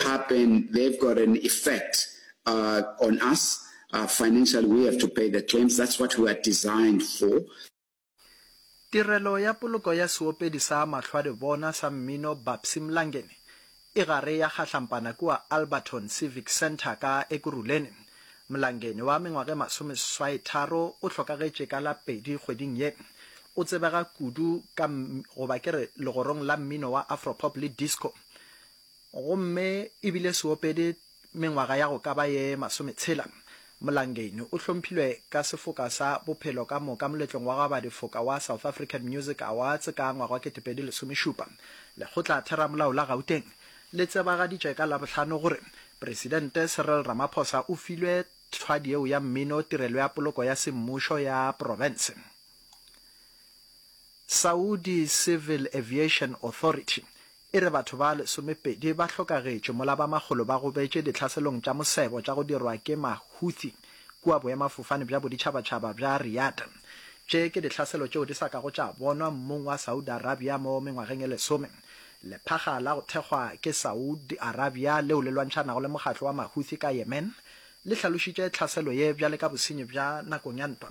happen, they've got an effect uh, on us. Uh, financially, we have to pay the claims. That's what we are designed for. Tirelo ya poloko ya seopedi sa mahlwadibona sa mmino Babsy Mlangeni e gare ya kgahlampana kua Alberton Civic Centre ka Ekurhuleni. Mlangeni wa mengwaga e masomeswaitharo o hlokagetše ka la pedi kgweding ye. O tsebega kudu ka goba ke re legorong la mmino wa afropop le disco. Gomme e bile se opede mengwaga ya go ka ba ye masometshela, Mlangeni o hlomphilwe ka sefoka sa Bophelo ka Moka moletlong wa go aba difoka wa South African Music Awards ka ngwaga wa ketepedi lesomešupa. Lekgotla Theramolao la Gauteng le tsebagaditše ka Labohlano gore Presidente Cyril Ramaphosa o filwe thwadi yeo ya mmino Tirelo ya Poloko ya Semmušo ya Profense. Saudi Civil Aviation Authority E re batho ba lesomepedi ba hlokagetše mola ba makgolo ba gobetše dihlaselong tša mosebo tša go dirwa ke ma-Houthi kua boemafofane bja boditšhabatšhaba bja Riyadh. Tše ke dihlaselo tšeo di sa kago tša bonwa mmung wa Saudi Arabia mo mengwageng e lesome. Lephaga la go thekgwa ke Saudi Arabia leo le lwantšhanago le mokgatlo wa ma-Houthi ka Yemen le hlalošitše tlhaselo ye bjale ka bosenyi bja nakong ya ntwa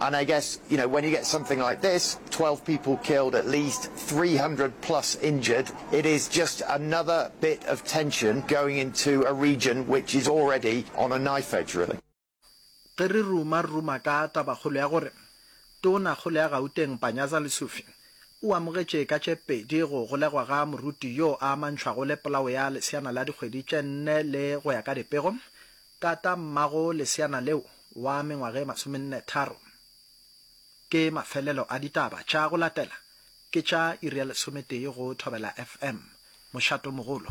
And I guess, you know, when you get something like this, 12 people killed, at least 300 plus injured, it is just another bit of tension going into a region which is already on a knife edge, really. Ge re ruma-ruma ka tabakgolo ya gore Tonakgolo ya Gauteng Panyaza Lesufi o amogetše ka tše pedi go golegwa ga moruti yo a amantšhwago le polao ya leseana la dikgwedi tše nne le go ya ka dipego, Tatamago leseana leo wa mengwaga e masomenne-tharo. Ke mafelelo a ditaba tša go latela, ke tša iri ya lesometee go Thobela FM, Mošatomogolo.